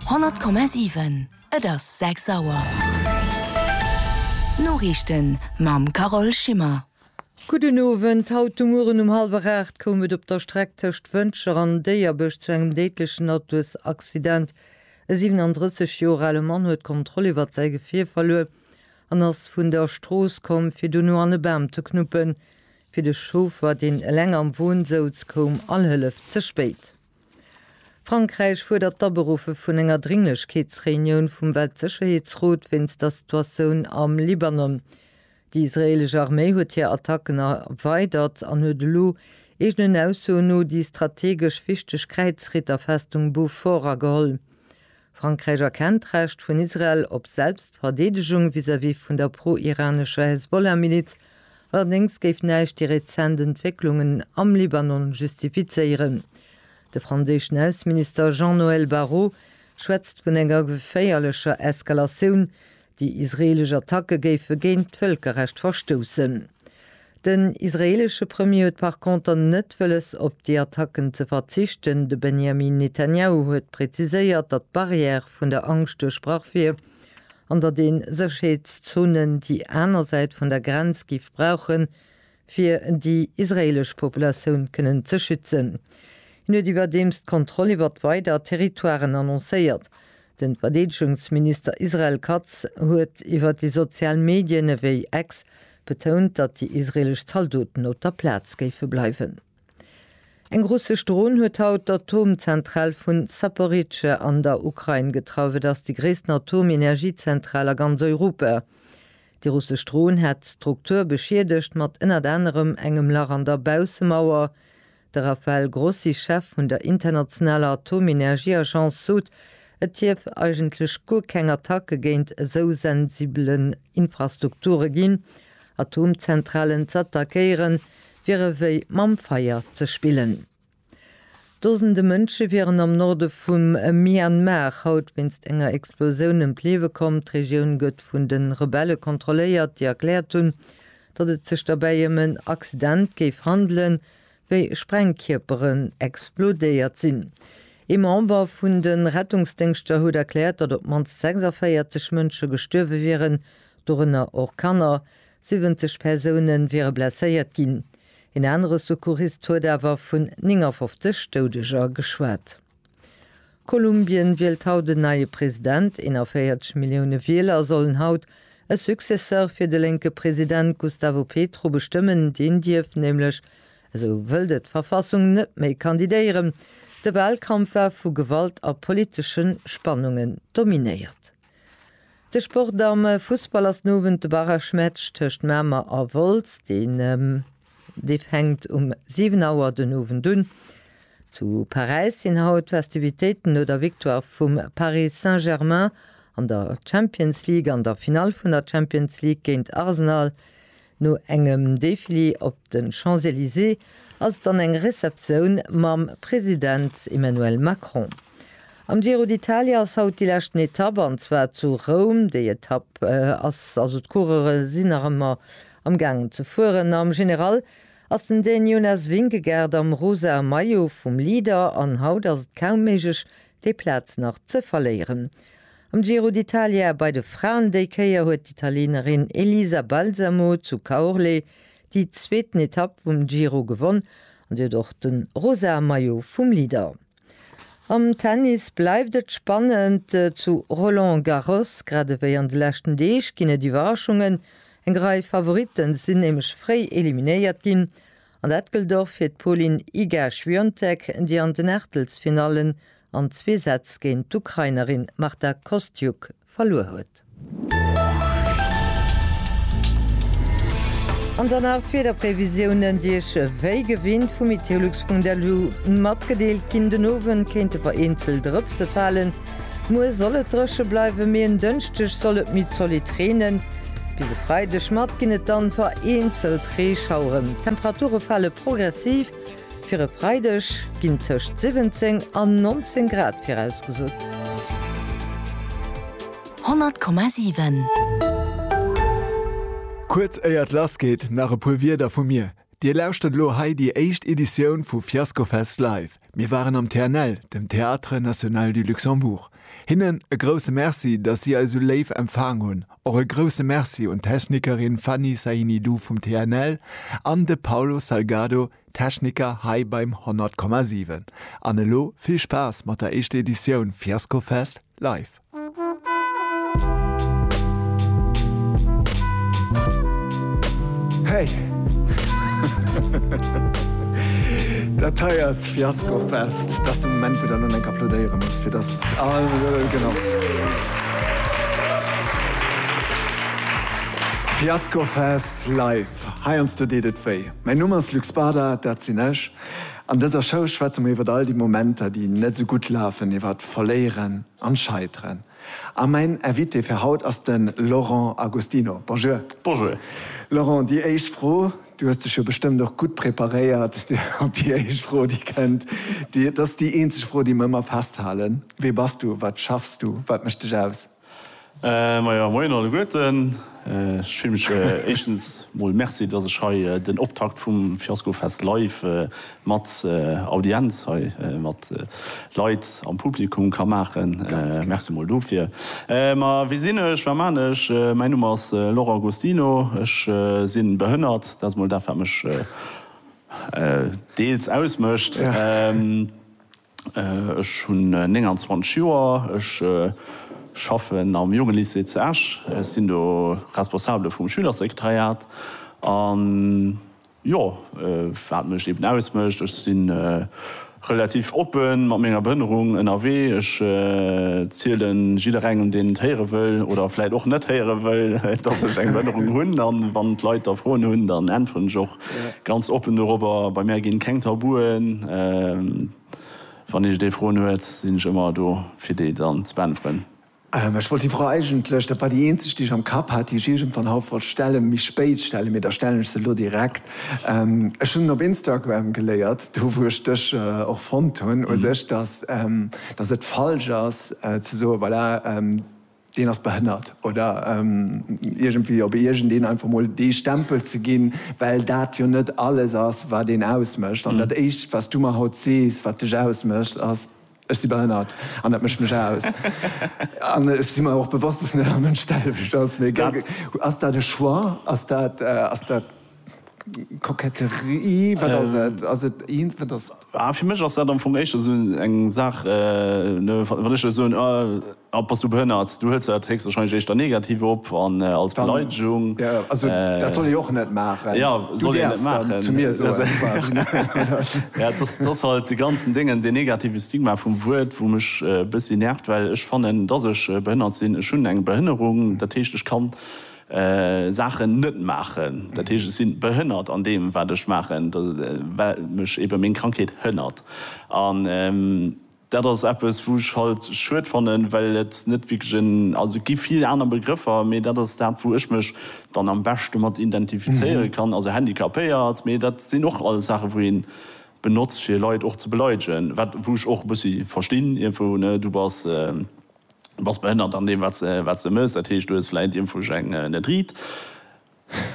Honnert Komma siwen, Et ass sechs Auer. D'Noriichten mam Carole Schimmer. Gudden Owend, Haut de Mueren um hallwer 8 koum et op der Streck tëscht Wëntger an Déierbech zu engem déidlechen Autosaccident. E 37 Joer ale Mann huet d'Kontroll iwwert säi Gefier verluer an ass vun der Strooss komm, fir dono an e Bam ze knuppen. Fir de Chauffer, deen eleng am Won souz, koum all Hëllef ze spéit. Frankräich fuerdert d'Aberuffe vun enger Dringlechkeetsreunioun vum Weltsécherheetsrot wéinst der Situatioun am Libanon. Déi israeelesch Arméi huet hir Attacken erweidert an huet elo, eegenen Aussoen no, déi strategesch wichteg Kräizritterfestung Beaufort ageholl. Frankräich erkennt d'Recht vun Israel op Selbstverdeedegung vis-à-vis vun der pro-iranescher Hezbollah-Miliz, allerdéngs géif näischt déi rezent Entwécklungen am Libanon justifizéieren. De franséischen Ausseminister Jean-Noël Barrot schwätzt vun enger geféierlecher Eskalatioun, Déi israeelesch Attacke géife géint d'Vëlkerrecht verstoussen. Den israeelesche Premier huet par conter net wëlles op déi Attacken ze verzichten. De Benjamin Netanyahu huet präziséiert, datt d'Barrière vun der Angscht duerchbrach wier an datt ee Sécherheetszonen déi aner Säit vun der Grenz géif brauchen, fir déi israeelesch Populatioun kënnen ze schützen. Hien huet iwwerdeems d'Kontroll iwwert weider Territoiren annoncéiert. Den Verdeedegungsminister Israel Katz huet iwwert déi sozial Medien ewéi X betount, datt déi israeelesch Zaldoten op der Plaz géife bleiwen. Eng russesch Dron huet haut d'Atomzentral vun Zaporizhzhia an der Ukrain getraff. Et ass déi gréissten Atomenergiezentral a ganz Europa. Déi russesch Dron hat d'Struktur beschiedegt, mat ënnert anerem engem Lach an der Baussemauer. De Rafael Grossi, Chef vun der internationaler Atomenergieagence, sot, et dierf eigentlech guer keng Attacke géint esou sensibelen Infrastrukture ginn. Atomzentralen z'attackéieren, wier ewéi mam Feier ze spillen. Dosende Mënsche wieren am Norde vum Myanmar haut wéinst enger Explosioun ëm d'Liewe komm. D'Regioun gëtt vun de Rebelle kontrolléiert, déi erkläert hunn, datt et sech derbäi ëm en Accident géif handelen, wéi Sprengkierperen explodéiert sinn. Ee Member vun de Rettungsdéngschter huet erkläert, datt op d'mannst 46 Mënsche gestuerwe wieren, dorënner och Kanner. 70 Persoune wiere blesséiert ginn. Een anere Secourist huet awer vun 59 Doudeger geschwat. Kolumbien wielt haut en neie President. 41 Millioune Wieler sollen haut e Successeur fir de lénke President Gustavo Petro bestëmmen. Deen dierf nämlech, esou wëllt et d'Verfassung, net méi kandidéieren. De Walkampf war vu Gewalt a politesche Spannungen dominéiert. De Sport am Fussball ass den Owend de Barragematch tëscht Mamer a Wolz. Deen dee fänkt um 7 Auer den Owend un. Zu Paräis sinn haut d'Festivitéiten no der Victoire vum Paris Saint-Germain an der Champions League. An der Finall vun der Champions League géint Arsenal No engem Défilé op de Champs-Elysées ass et dann eng Receptioun mam President Emmanuel Macron. Am Giro d'Italia ass haut déi leschten Etapp, an zwar zu Roum. Déi Etapp ass also, d'Coureure sinn nach ëmmer am gaangen ze fueren. Am General ass den Dän Jonas Vingegaard am rosa Maillot vum Leader an haut ass et kaum méiglech déi Plaz nach ze verléieren. Am Giro d'Italia bei de Fraen déi Kéier huet d'Italienerin Elisa Balsamo zu Caorle déi zweeten Etapp vum Giro gewonn an si huet och de rosa Maillot vum Leader. Am Tennis bleift et spannend zu Roland Garros. Grad ewéi an de leschten Deeg ginn et Iwwerraschungen. Eng Rei Favoritten sinn nämlech fréi eliminéiert ginn An dat gëllt och fir d'Polin Iga-Świątek, déi an den Aachtelsfinallen an zwee Sätz géint d'Ukrainerin Marta Kostyuk verluer huet. An dann nach d'Wiederprevisiounen, déi Iech wéi gewinnt vu meteolux.lu matgedeelt ginn. Den Owend kéinte vereenzelt Drëpse falen. Muer soll et dréche bleiwen, mee en Dënschdeg soll et méi zolidd reenen. Bis e Freideg mat ginn et dann vereenzelt Reeschaueren. D'Temperature fale progressiv, fir e Freideg ginn tëscht 17 an 19 Grad virausgesot. 100,7. Kuerz éier et lass geet, nach e puer Wierder vu mir. Dir lauschtert elo hei déi éischt Editioun vu Fiascofest Live. Mir waren am TNL, dem Théâtre National du Luxembourg. Hinnen e grousse Merci, dass si eis esou léif empfaang hunn. Och e grousse Merci un d'Technikerin Fanny Sahinidou vum TNL an de Paulo Salgado, Techniker hei beim 100,7. An elo vill Spaass mat der éischter Editioun Fiasco Fest live! Hey! Dat hei ass Fiaskofest. Dat ass de Moment, wou der elo eng applodéiere muss, fir dass all Lëll genau. Fiaskofest live. Heiansdo deet et wéi. Mäin Numm ass Luc Spada, dat sinn ech. An dëser Show schwätze mer iwwer all déi Momenter, déi net esou gutt lafen, iwwer. Verléieren an Scheiteren. A mäin Invité fir haut ass de Laurent Agostino. Bonjour. Bonjour. Laurent, déi éischt Fro, du hues dech jo bestëmmt och gutt preparéiert op déi éischt Fro, déi kënnt. Dat ass déi eenzeg Fro, déi mer ëmmer festhalen. Wee bass du? Wat schaffs du? Wat mécht dech aus? Majo, moien alleguerten. Ech freeë mech éischtens mol, Merci, dass ech hei den Optakt vum Fiaskofest live mat Audienz hei, mat Leit am Publikum ka maachen. Merci mol dofir. Ma wie sinn ech, wat man ech? Mäin Numm ass Laurent Agostino. Ech si behënnert, dat ass mol dat wat mech deels ausmécht. Ech hunn 29 Joer, ech schaffen am Jongelycée zu Esch, ech sinn do Responsabele vum Schülersekretariat. A jo, wat mech eben ausmécht, ech si relativ oppe mat menger Behënnerung ënnerwee, ech ziele jidderengem, deen et héiere wëll oder vläicht och net héiere wëll, datt ech eng Behënnerung hunn. A wann d'Leit da Froen hunn, dann äntweren ech och Ganz oppen dorobber, bei mär ginn keng Tabuen. Wann iech dee Froen huet, sinn ech ëmmer do fir déi dann ze beäntweren. Ech wollt déi Fro eigentlech, dat war déi eenzeg déi ech am Kapp hat, déi ech iergendwann haut wollt stellen, méi spéit stellen, mee da stellen ech se elo direkt. Ech hunn op Instagram geléiert, do wou ech dech och fonnt hunn u sech, dass et falsch ass ze soen, voilà, deen ass behënnert oder iergendwéi op iergendeen einfach mol dee Stempel ze ginn, well dat jo net alles ass, wat een ausmécht. An dat Éischt, wat s du mer haut sees, wat dech ausmécht, ass, Ech si behënnert an dat mécht mech aus. An ech si mer och bewosst, dass net all Mënsch d'selwecht ass. Mee ass dat e Choix? Ass dat. Koketterie, wat ass et? Ass et eent, wat ass et? Ah, fir mech ass dat am Fong éischter esou eng Saach, wann ech der soen, ah, bass du behënnert, du huels jo dat héchstwahrscheinlech éischter negativ op an als Beleidegung. Ja, also dat soll ee och net maachen. Jo, soll een net maachen. Du däerfs dann zu mir soen, quasi, ne? Ja, dass, dass halt dee ganzen Déngen, dee negative Stigma vum Wuert, wou mech e bëssi nervt, well ech fannen, dass ech behënnert sinn, ech hunn eng Behënnerung, dat heescht, ech kann Saachen net maachen, dat heescht ech sinn behënnert an deem wat ech maachen, well mech ebe meng Krankheet hënnert. An dat ass eppes wou ech halt schued fannen, well et net wierklech en, also et gi vill aner Begrëffer, mee dat ass dat wou ech mech dann am beschte mat identifizéiere kann, also handicapéiert, mee dat sinn och alles Saache wou een benotzt fir Leit och ze beleidegen, wat wou ech och e bëssi verstinn iergendwou, ne, du bass. bass behënnert an deem wat se mëss, dat heescht du hues vläit iermfuerg eng net riit,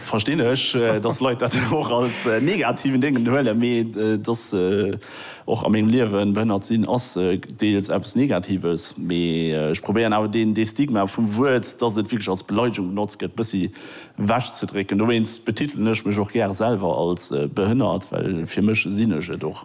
verstinn ech dass Leit dat och als negativen Déngen huelen, mee et ass och a mengem Liewen, behënnert sinn ass deels eppes negatives, mee ech probéieren awer dee Stigma vum Wuert, dass et wierklech als Beleidegung benotzt gëtt, bëssi ewech ze drécken, dowéinst betitelen ech mech och gär selwer als behënnert, well fir mech sinn ech et och.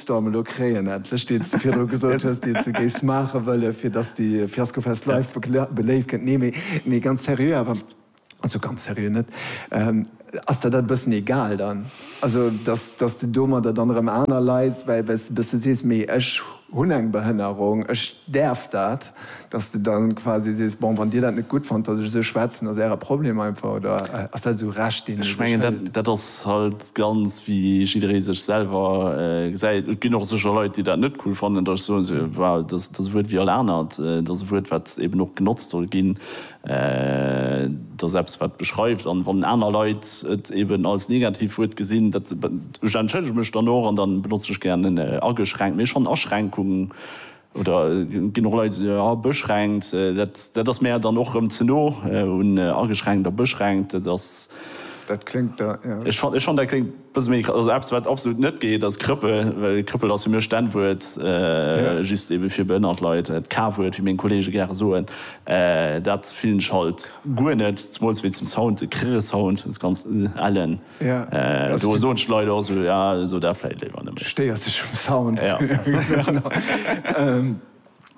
Shitstorm elo kréien endlech, deen s de virdru gesot hues, deen s de géifs maache wëllen, fir datt s de Fiaskofest live beléift gëtt. Nee, mee, mee ganz seriö awer, also ganz seriö net, ass der dat e bëssen egal dann? Also datt, datt s de domadder dann erëm aner Leit, well, well s de e bësse sees, mee ech hunn eng Behënnerung, ech däerf dat. Dass de dann quasi sees, bon, wann dir dat net gutt fannt, dass ech esou schwätzen, ass äre Problem einfach, oder ass dat esou Recht, deen ee Ech sech mengen, dat, hëlt? dat ass halt ganz wéi jidderee sech selwer gesäit. Et ginn och sécher Leit, déi dat net cool fannen, dass ech soen, se, well dass dass e Wuert wéi all anert, et ass e Wuert, wat eben och genotzt soll ginn, et ass eppes, wat beschreift. An wann aner Leit et eben als Negativwuert gesinn, dat, ech entschëllege mech dann och an da benotzen ech gären en ageschränkt, mee ech fannen Aschränkung, Oder et ginn och Leit, déi soen, ah, beschränkt, dat ass mär dann och erëm ze no un ageschränkt a beschränkt. Dat ass. Dat kléngt da, jo. Ech fannen, dat kléngt e bësse méi, also eppes, wat absolut net geet, ass Krëppel. Well Krëppel ass fir mech d'N-Wuert, just ebe fir behënnert Leit, d'K-Wuert, wéi meng Kollege gäre soen. Dat fillen ech halt guer net, zemools wéi zum Sound, de Krrr-Sound, dës ganz ëh, ellen. Do soen d'Leit och esou, jo, so dat vläit léiwer net méi. Stéiers dech um Sound.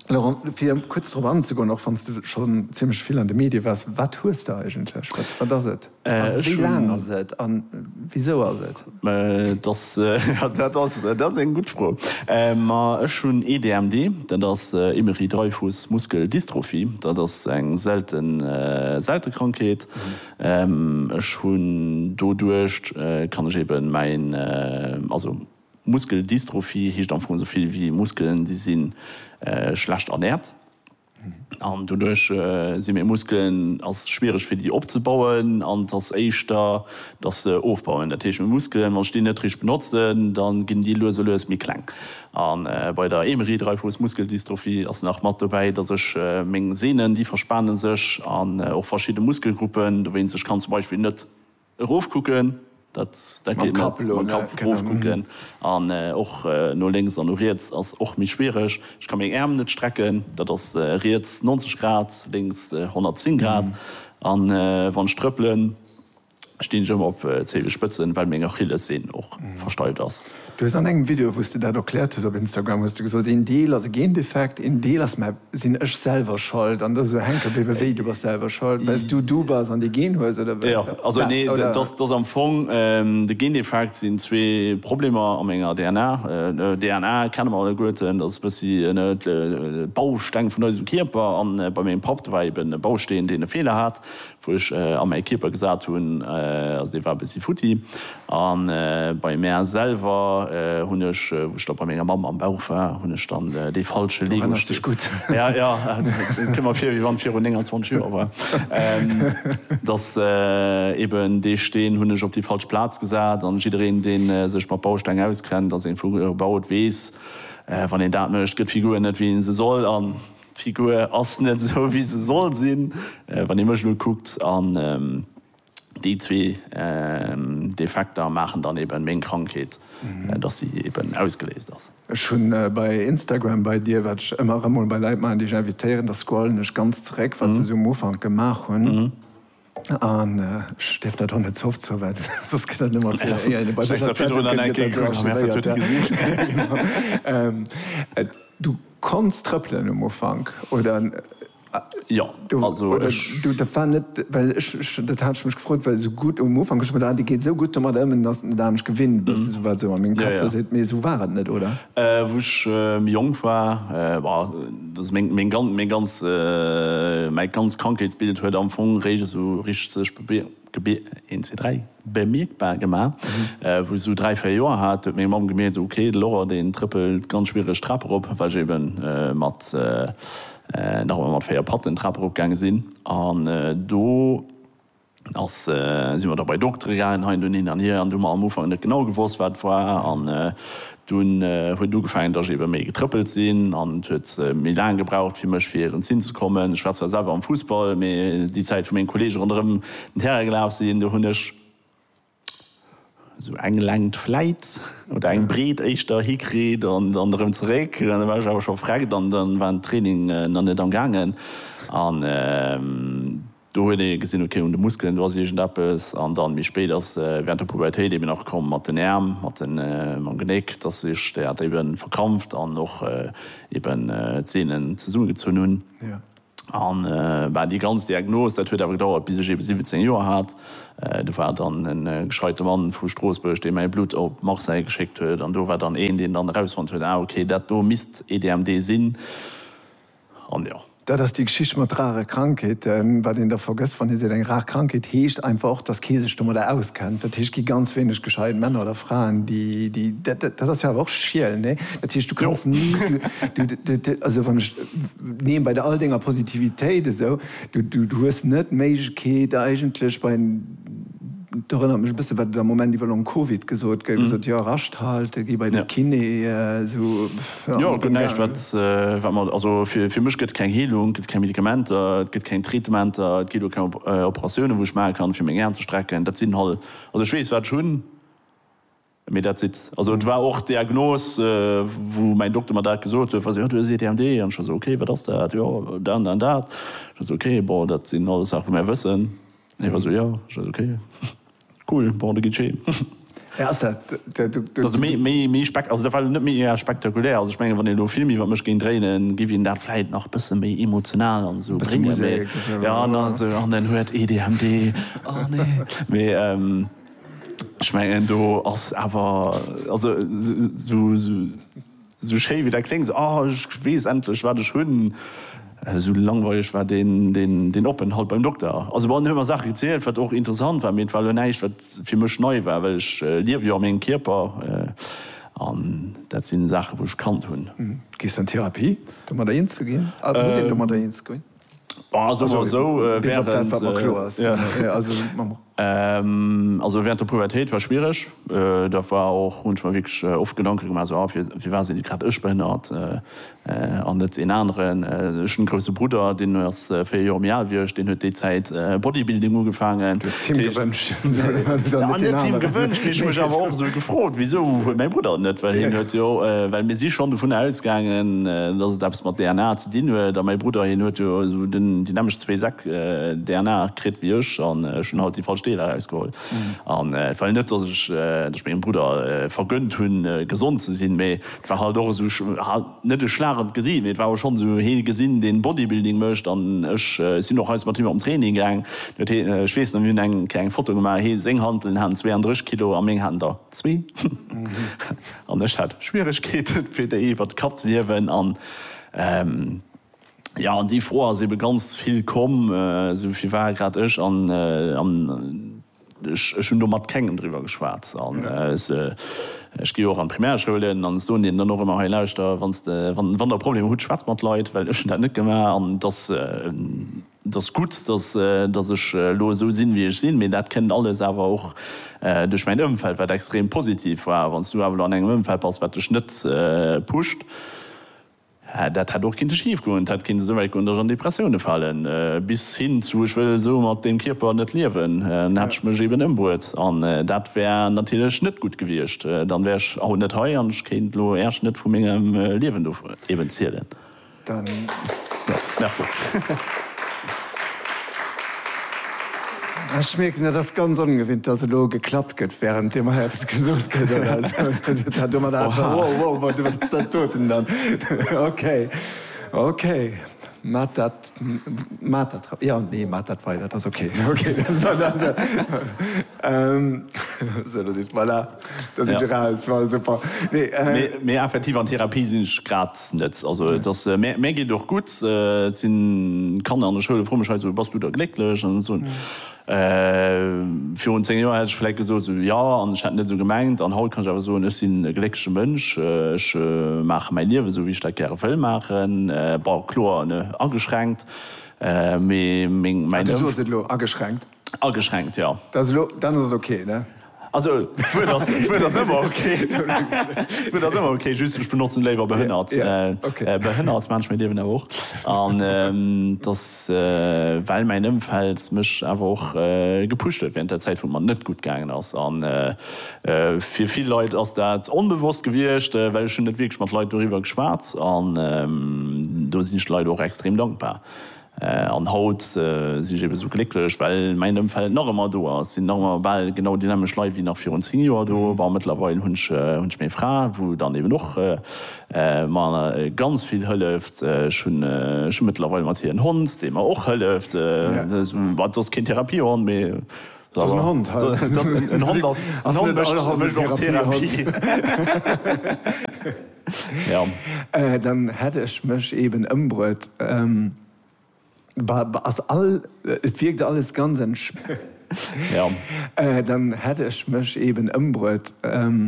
Laurent, fir kuerz drop anzegoen, och wann s de schonn zimlech vill an de Medie waars, wat hues de eigentlech? Wat ass et? A wéi laang ass et? A wisou ass et? Dat ass eng gutt Fro. Ma ech hunn ee DMD, dat ass Émery-Dreifuss-Muskel-Dystrophie. Dat ass eng selte Krankheet. Ech hunn doduercht kann ech eben mäin, also Muskeldystrophie heescht am Fong esou vill wéi Muskelen déi si schlecht ernährt an doduerch si meng Muskelen ass schwiereg fir déi opzebauen an et ass éischter dass se ofbauen. Dat heescht meng Muskelen wann ech déi net richteg benotzen dann ginn déi lues a lues méi kleng A bei der Emery Dreifuss Muskeldystrophie ass nach mat dobäi, dass ech meng Sehnen, déi verspane sech, an och verschidde Muskelgruppen, dowéinst ech kann zum Beispill net erofkucken, dat dat geet net, mam Kapp erofkucken, an och no lénks an no riets ass och méi schwiereg. Ech ka meng Äerm net strecken, dat ass riets 90 Grad, lénks 110 Grad, an wann ech trëppelen, stinn ech ëmmer op Zeelenspëtzen, well meng Achillessehn och versteift ass. Du hues an engem Video wous de dat erkläert hues op Instagram hues de gesot, een Deel ass e Gendefekt, een Deel ass, mä sinn ech selwer schold an dass esou hänke bléiwe wéi? Du bass selwer schold well s du du bass an dee Gen hues oder wat? Jo, also nee, dat ass am Fong de Gendefekt, sinn zwee Problemer a menger DNA. DNA kenne mer alleguerten, dat ass e bëssi de Bausteng vun eisem Kierper an bei mengem Papp, do war eben e Bausteen deen e Feeler hat, Wou ech a mäi Kierper gesat hunn, also dee war e bëssi futti. A bei mär selwer hunn ech, wou ech da bei menger Mamm am Bauch war, hunn ech dann dee falsche Lego-Steen. Du erënners dech gutt. Ja, ja, et kënnt mer vir, wéi wann et virun 29 Joer war. Dass eben dee Steen hunn ech op déi falsch Plaz gesat. An jiddereen, dee sech mat Bausteng auskennt, ass ee vu gebaut, weess, wann een dat mécht, gëtt d'Figur net, wéi ee se soll. D'Figur ass net esou wéi se soll sinn, wann ee mech elo kuckt, an déi zwee Defekter maachen dann eben meng Krankheet, dass si eben ausgeléist ass. Ech hunn bei Instagram bei dir, wat ech ëmmer erëm mol bei Leit maachen, déi ech invitéieren, da scrollen ech ganz zeréck, wat se esou um Ufank gemaach hunn. An ech dierf dat och net ze oft soen, well soss gëtt dat nëmmer fir éier een e bei der Rezeptbënn gëtt, dat archivéiert ginn. Du konns trëppelen um Ufank, oder? Jo, also ech. Dat war net, well ech, dat hat ech mech gefrot, well esou gutt um Ufank hu ech geduecht, ah, dee geet esou gutt domadder ëm, dass en et anescht gewinnt ass, esou wat esou a mengem Kapp do seet. Mee esou war et net, oder? Wou ech méi jonk war, war. Also meng, meng gan, meng ganz, mäi ganzt Krankheetsbild huet am Fong réischt esou richteg sech be, be, een, zwee, dräi, bemierkbar gemaach. Wou ech esou dräi, véier Joer hat, huet meng Mamm gemierkt, ok, de Laurent, deen trëppelt ganz schwiereg d'Trap erop, well ech ebe mat, nach ëmmer mat véier Patten d'Trap erop gaange sinn. An do. Da si mer da bei Doktere gaangen, hei an do, hin an hier, an do hu mer am Ufank net genau gewosst, wat et war. An dunn huet ugefaangen, datt ech ebe méi getrëppelt sinn, an et huet méi laang gebraucht fir mech fir hiren Zinn ze kommen. Ech war zwar selwer am Fussball, mee déi Zäit, wou meng Kolleege ronderëm den Terrain gelaf sinn, do hunn ech. Sou eng Längt vläit, oder eng Breet éischter, hikritt an dann erëm zeréck. An da war ech awer scho vreckt an da war den Training nach net am gaangen. An do huet ee gesinn, ok, un de Muskelen, do ass iergendeppes. An dann méi spéit ass während der Pubertéit eben nach komm mat den Äerm, mat mam Genéck, dass sech dat eben verkrampft an och eben d'Sehnen zesummegezunn hunn. An bah, déi ganz Diagnos, dat huet awer gedauert, bis ech eben 17 Joer hat. Do war dann e gescheite Mann vu Stroossbuerg, dee mäi Blutt op Marseille geschéckt huet. An do war dann een, deen dann erausfonnt huet, Ah, okay, dat do misst EDMD sinn. An jo. Dat ass déi Geschicht mat rare Krankheeten. Wat een da vergësst, wann ee seet, eng rar Krankheet, heescht einfach och, dass kee sech domadder auskennt. Dat heescht, et gi ganz wéineg gescheit Männer oder Fraen, déi, déi, dat ass jo awer och schiel, nee? Dat heescht, du kanns ni, du, also wann ech. Nee, bei all denger Positivitéit esou, du, du, du hues net d'Méiglechkeet eigentlech bei, et erënnert mech e bësse wat et am Moment iwwer long Covid gesot gëtt, gesot, jo, rascht halte, gi bei de Kiné, esou, pff, Jo, et gëtt näischt wat, wat mer, also fir, fir mech gëtt et keng Heelung, et gëtt keng Medikamenter, et gëtt keng Traitementer, et ginn och keng Operatiounen wou ech maache kann fir meng Aen ze strecken, dat sinn halt, also ech weess wat ech hunn. Mee dat sidd. Also et war och d'Diagnos, wou mäin Dokter mer dat gesot huet, was, jo, du hues EDMD. An ech war esou, okay, wat ass dat? Jo, dat an dat an dat. Ech war esou, okay, bon, dat sinn alles Saache wou mär wëssen. Hie war esou, jo. Ech war esou, okay, cool, bon, da gitt scheen. Hie ass dat, de Dokter. Also méi, méi, méi spek, also dat war elo net méi egal spektakulär. Also ech mengen, wann een elo e Film iwwer mech géing dréinen, géif een dat vläit nach e bësse méi emotional an esou bréngen. Mee, jo, an dann esou, an en huet EDMD, oh nee. Mee. Ech mengen do ass awer, also esou schéi wéi dat kléngt, oh ech weess endlech wat ech hunn, esou langweileg war deen Openthalt beim Dokter. Also bon, en huet mer Saache gezielt, wat och interessant war, mee et war elo näischt wat fir mech nei war, well ech liewe jo a mengem Kierper an dat sinn Saache wou ech kannt hunn. Gees du an Therapie, domadder eens ze ginn? Muss een domadder eens ginn? Also sou esou während der Pubertéit war schwiereg da war och hunn ech mer wierklech oft Gedanken gemaach sou firwat sinn grad ech behënnert an net een aneren. Ech hunn e grousse Brudder deen ass 4 Joer méi al wéi ech, deen huet déi Zäit Bodybuilding ugefaangen. Du hues et him gewënscht an net den aneren. An net him gewënscht, mee ech hu mech awer och sou gefrot wisou huet mäi Brudder et net, well hien huet jo, well mir si schonn dovunner ausgaangen dass et eppes mat DNA Deen huet, a mäi Brudder, hien huet jo esou déi nämmlecht zwee Säck DNA kritt wéi ech, an ech hunn halt déi falsch Deeler erausgeholl. An et war jo net, datt ech mengem Brudder vergënnt hunn, gesond ze sinn, mee et war halt och esou, net e Schlag an d'Gesiicht, mee et war och schonn esou, hie gesinn, deen Bodybuilding mécht, an ech sinn och eis mat him op den Training gaang. Ech weess nach, mir hunn eng Kéier eng Foto gemaach, hie, seng Handelen haten 32 Kilo a meng haten der zwee. An ech hat Schwieregkeeten, fir déi iwwert de Kapp ze hiewen. Jo, an déi Fro ass ebe ganz vill komm, esou wéi war grad ech an ech hunn do mat kengem driwwer geschwat. An ech gi jo och an d'Primärschoulen an soen deenen dann och ëmmer, hei lauschter, wann der Problemer hutt, schwätzt mat Leit, well ech hunn dat net gemaach an et ass, Et ass gutt, dass, dass ech elo esou sinn, wéi ech sinn, mee dat kënnt alles awer och duerch mäin Ëmfeld, wat extrem positiv war. Wann s du awer elo an engem Ëmfeld bass, wat dech net pusht, dat hätt och kinnte schif goen. Et hätt kinnte souwäit goen, dass ech an Depressioune falen, bis hin zu, ech wëll esou mat deem Kierper net liewen. Dann hätt ech mech eben ëmbruet an dat wär natierlech net gutt gewiescht. Dann wär ech haut net hei an ech kéint elo Äerch net vu mengem Liewen do eben zielen. Ech mierken, et ass ganz ongewinnt, dass elo geklappt gëtt, wärend dir mei eppes gesot kritt oder esou. net also et ass mär mär geet och gutt et sinn Kanner an der Schoul froe mech hei esou bass du da glécklech an esou virun 10 Joer hätt ech vläit gesot esou jo an ech hätt net esou gemengt an haut kann ech awer soen ech sinn e gléckleche Mënsch ech maache mäi Liewen esou wéi ech dat gäre wëll maachen bon kloer ne ageschränkt mee meng mäin Ëmf. Du soos et elo, ageschränkt. Ageschränkt, jo. Dat ass elo, dann ass et ok, ne? Also, d'Wuert ass, d'Wuert ass ëmmer ok. D'Wuert ass ëmmer ok, just ech benotzen léiwer behënnert. Jo, jo, ok. Behënnert, Mensch, mir liewen awer och. An et ass, well mäin Ëmfeld mech awer och gepusht huet während der Zäit, wou et mer net gutt gaangen ass. A fir vill Leit ass dat onbewosst gewiescht, well ech hunn net wierklech mat Leit doriwwer geschwat. An do sinn ech de Leit och extrem dankbar. An haut sinn ech eben esou glécklech, well mäin Ëmfeld nach ëmmer do ass. Et sinn nach ëmmer bal genau déi nämmeg Leit wéi nach virun 10 Joer do. Bon, mëttlerweil hunn ech meng Fra, wou dann eben och mer ganz vill hëlleft. Ech hunn mëttlerweil mat hir en Hond, dee mer och hëlleft. Wat soss keen Therapiehond, mee en Hond, en Hond mécht och Therapie. Dann hätt ech mech eben ëmbruet. Et wierkt alles ganz entspaant. Dann hätt ech mech eben ëmbruet.